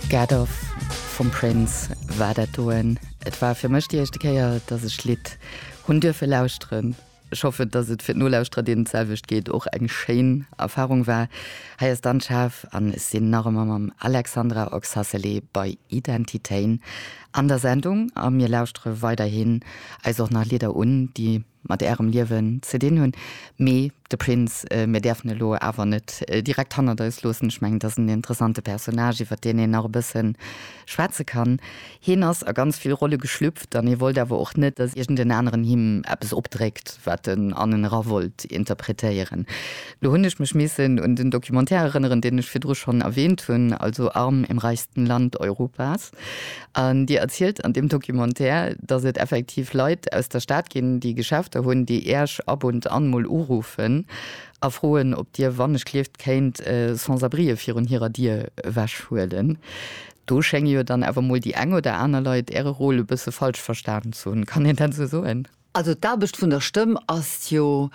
Get Off vum Prince war dat do en. Et war fir mech déi éischte Kéier, dass ech d'Lidd hunn duerfe lauschteren. Ech hoffen, dass et fir d'Nolauschterer, deenen d'selwecht geet, och eng schéin Erfarung war. Hei ass dann d'Schaf an ech sinn nach ëmmer mam Alexandra Oxacelé bei Identitéin an der Sendung a mir lauschtere weiderhin eis och nach Lidder un, déi mat ärem Liewen ze dinn hunn, mee de Prince, mir däerfen e lo awer net direkt hannert eis loossen, ech mengen et ass en interessante Personnage iwwert deen een nach e bësse schwätze kann. Hien ass a ganz vill Rolle geschlüpft an hie wollt awer och net, datt iergend en aneren him eppes opdréckt, wat en an en era wollt interpretéieren. Lo hunn ech mech missen un den Documentaire erënneren, deen ech virdru schonn erwähnt hunn, also Arm im reichsten Land Europas. An Dir erzielt an deem Documentaire, datt et effektiv Leit aus der Stad ginn, déi Geschäfter hunn, déi Iech ab und an mol uruffen a froen, ob Dir wannechlieft kéint Sans-abrien virun hirer Dier ewechhuelen. Do schénge jo dann awer mol déi eng oder aner Leit Äre Rôle e bësse falsch verstanen ze hunn. Kann een dat esou soen? Also d'Aarbecht vun der Stëmm ass jo,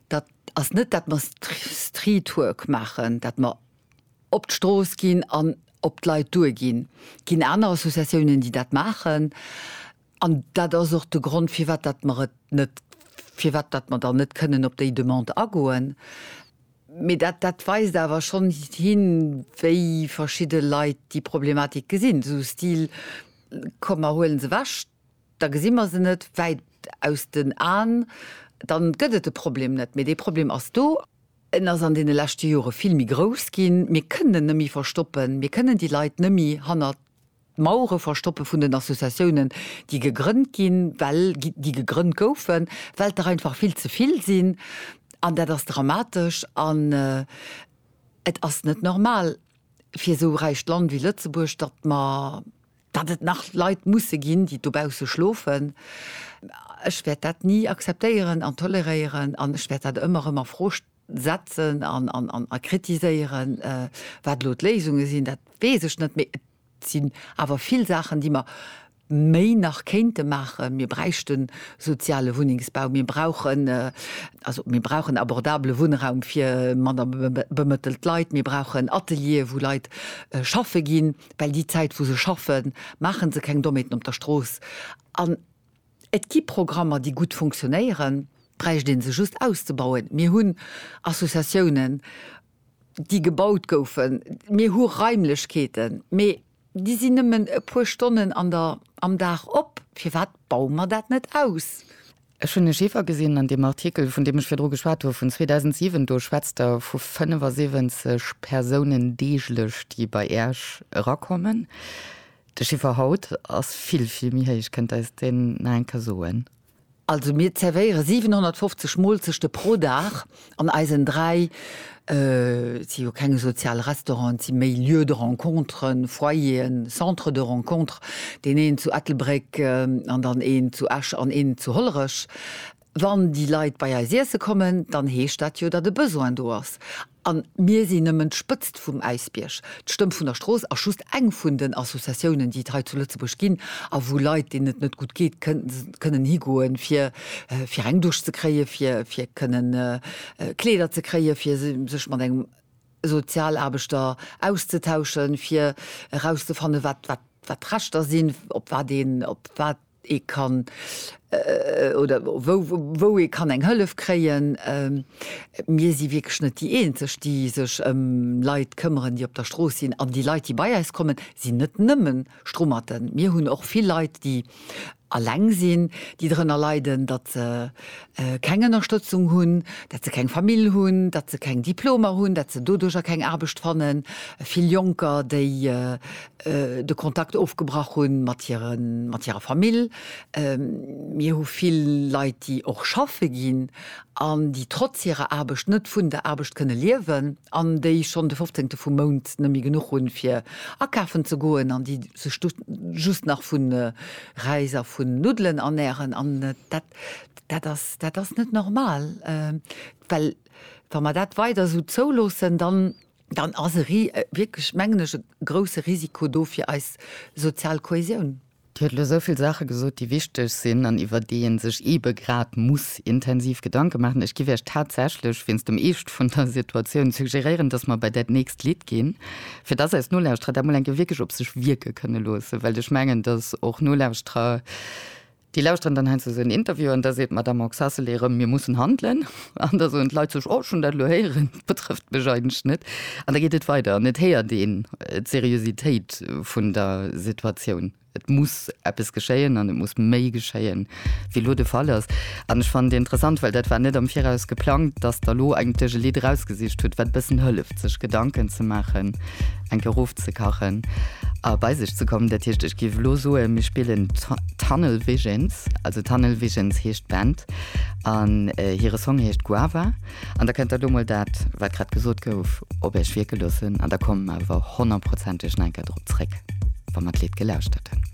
dat ass net, datt mer Streetwork maachen, datt mer op d'Strooss ginn an op d'Leit duer ginn. Et ginn aner Associatiounen, déi dat maachen. An dat ass och de Grond, firwat datt mer et net, firwat datt mer dann net kënnen op déi Demande agoen. Mee dat, dat weist awer schonn hin, wéi verschidde Leit déi Problematik gesinn, esou Stil, Komm, mer huele se ewech. Da gesi mer se net wäit aus den Aen. Dann gëtt et de Problem net, mee dee Problem ass do. En ass an deene leschte Jore vill méi grouss ginn. Mir kënnen en net méi verstoppen. Mir kënnen déi Leit net méi hanner d'Mauere verstoppe vun den Associatiounen, déi gegrënnt ginn, well, déi gegrënnt goufen, well et der einfach vill ze vill sinn. An dat ass dramatesch. An et ass net normal fir esou räicht Land wéi Lëtzebuerg, datt mer, Datt et nach Leit musse ginn, déi dobausse schlofen, ech wäert dat ni akzeptéieren an toleréieren an ech wäert dat ëmmer erëm a Fro setzen a kritiséieren. Wat elo d'Léisunge sinn, dat weess ech net, mee et sinn awer vill Saachen, déi mer méi nach kéinte maachen. Mir bräichten soziale Wunnengsbau, mir brauchen, also mir brauchen abordabele Wunnraum fir manner bemëttelt Leit, mir brauchen Ateliere, wou Leit schaffe ginn. well déi Zäit wou se schaffen, maache se keng Dommheeten op der Strooss an et gi Programmer déi gutt funktionéieren, bräicht ee se just auszebauen. Mir hunn Associatiounen déi gebaut goufen, mir hu Raimlechkeeten, mee déi sinn nëmmen e puer Stonnen am Dag op, firwat baue mer dat net aus? Ech hunn e Chiffer gesinn an deem Artikel, vun deem ech virdru geschwat hu vun 2007. Do schwätzt Der vu 75 Persounen deeglech, déi bei Iech erakommen. De Chiffer haut ass vill, vill méi héich. Kënnt Der eis deen nach eng Kéier soen? Also mir zervéiere 750 Moolzechte pro Dag An eisen dräi, et si jo keng sozial Restauranten, et si méi Lieux de rencontre, Foyeren, Centres de rencontre, deen een zu Ettelbréck an dann een zu Esch an een zu Hollerech, wann déi Leit bei eis iesse kommen, dann heescht dat jo, datt e Besoin do ass. A mir sinn nëmmen d'Spëtzt Spëtzt vum Äisbierg, d'Stëmm vun der Strooss ass just eng vun den Associatiounen, déi et hei zu Lëtzebuerg ginn a wou Leit, deenen et net gutt geet, kënnen higoen, fir fir eng Dusch ze kréien, fir fir kënnen Kleeder ze kréien, fir sech mat engem Sozialaarbechter auszetauschen, fir erauszefannen, wat wat wat d'Rechter sinn, op wat een op wat ee kann oder wou ee kann eng Hëllef kréien. Mir si wierklech net déi Eenzeg, déi sech ëm Leit këmmeren, déi op der Strooss sinn. An déi Leit, déi bei eis kommen, sinn net nëmme Strummerten. Mir hunn och vill Leit, déi eleng sinn, déi drënner leiden, datt se keng Ënnerstëtzung hunn, datt se keng Famill hunn, datt se keng Diplomer hunn, datt se doduercher keng Aarbecht fannen. Vill Jonker, déi de Kontakt ofgebrach hu mat hirer Famill. Mir hu vill Leit, déi och schaffe ginn an déi trotz hirer Aarbecht net vun der Aarbecht kënne liewen an déi schonn de fofzéngte vum Mount net méi genuch hunn, fir akafen ze goen an déi sech just nach vu Räis a vun Nuddelen ernären. An dat ass net normal, well wa mer dat weider esou zouloossen, dann dann ass e wierklech, mengen ech, e grouse Risiko do fir eis sozial Kohäsioun. Dir hutt elo esou vill Saache gesot, déi wichteg sinn an iwwer déi ee sech eebe grad muss intensiv Gedanke maachen. Ech géif Iech tatsächlech wéinst dem Eescht vun der Situatioun suggéréieren, dass mer bei dat nächst Lidd ginn, fir dass eis Nolauschterer dat mol eng Kéier wierklech op sech wierke kënne loossen, well ech mengen, dass och Nolauschterer, Déi lauschteren dann heiansdo esou en Interview an da seet d'Madamm Oxacelay erëm, Mir mussen handelen. An da soen d'Leit sech, Oh, ech hunn dat elo héieren, betrëfft mech eigentlech net. An da geet et weider an et héiert een d'Seriositéit vun der Situatioun. Et muss eppes geschéien an et muss méi geschéien, wéi elo de Fall ass. An ech fannen et interessant, well dat war net am Viraus geplangt, datt Der elo eigentlech e Lidd erausgesicht hutt, wat e bëssen hëlleft. sech Gedanken ze maachen, eng Kéier ofzekachen a bei sech ze kommen. Dat heescht, ech géif elo soen, mir spillen Tunnel Visions. Also Tunnel Visions heescht d'Band an hire Song heescht Guava. An da kënnt Der do mol dat, wat grad gesot gouf, op Iech wierke loossen an da komme mer awer honnertprozenteg nach eng Kéier drop zréck, wa mer d'Lidd gelauschtert hunn.